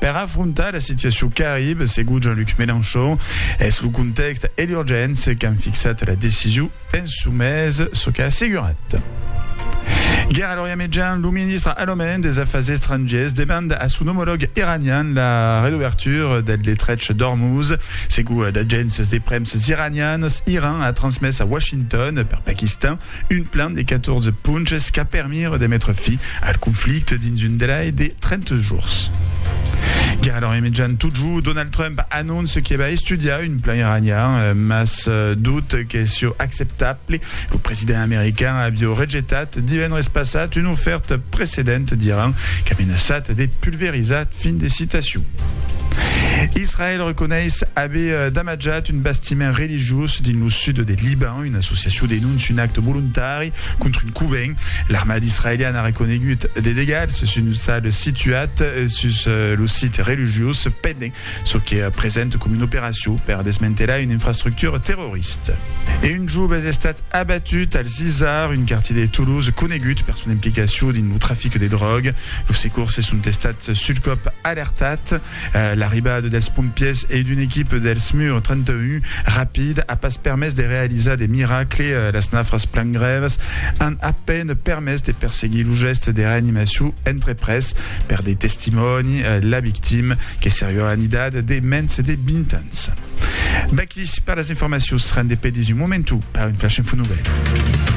Per afrontar la situacion qu'arribe, segon Jean-Luc Mélenchon, es lo contèxt e l'urgéncia qu'an fixat la decision, penso mès, çò qu'a assegurat. Guèra l'Orient Mejan, lo ministre alemand des Afars Estrangièrs demanda a son omològ iranian la redobertura del Detrech d'Ormuz. Segon d'agéncias de premsas iranianas, Iran a transmés a Washington, per Paquistan, Un plan de 14 ponches qu'a permire de metre fi al conflicte dins un delai de 30 jorns. Gara l'an remitjant totjor, Donald Trump anonce que va estudiar un plan iranian, mas dut que sieu acceptable. Lo president american avieu rejetat divendres passat una ofèrta precedenta d'Iran qu'a menaçat de pulverizar. Fin de citacion. Israèl reconeis aver damatjat un bastiment religiós dins lo sud de Liban. Una associacion denóncia un acte volontari contra un covent. L'armada israeliana a reconegut de degats sus un ostal situat sus lo site religiós pendent çò que presenta coma una operacion per desmantelar una infrastructura terrorista. E un jove es estat abatut al Zizar, un quartier de Toulouse conegut per son implicacion dins lo trafic de dròga. Los secorsses son estats sul còp alertats. L'arribada dels pompièrs e d'una equipa del SMUR 31 rapid a pas permés de realizar de miracle, las nafras plan grèvas an a peine permés de perseguir lo gèste de reanimacion entreprés per de testimòni, la victima que seriá en idat de mens de 20 ans. V'aquí per las informacions, rendez pedis un momentu per un flash info novèl.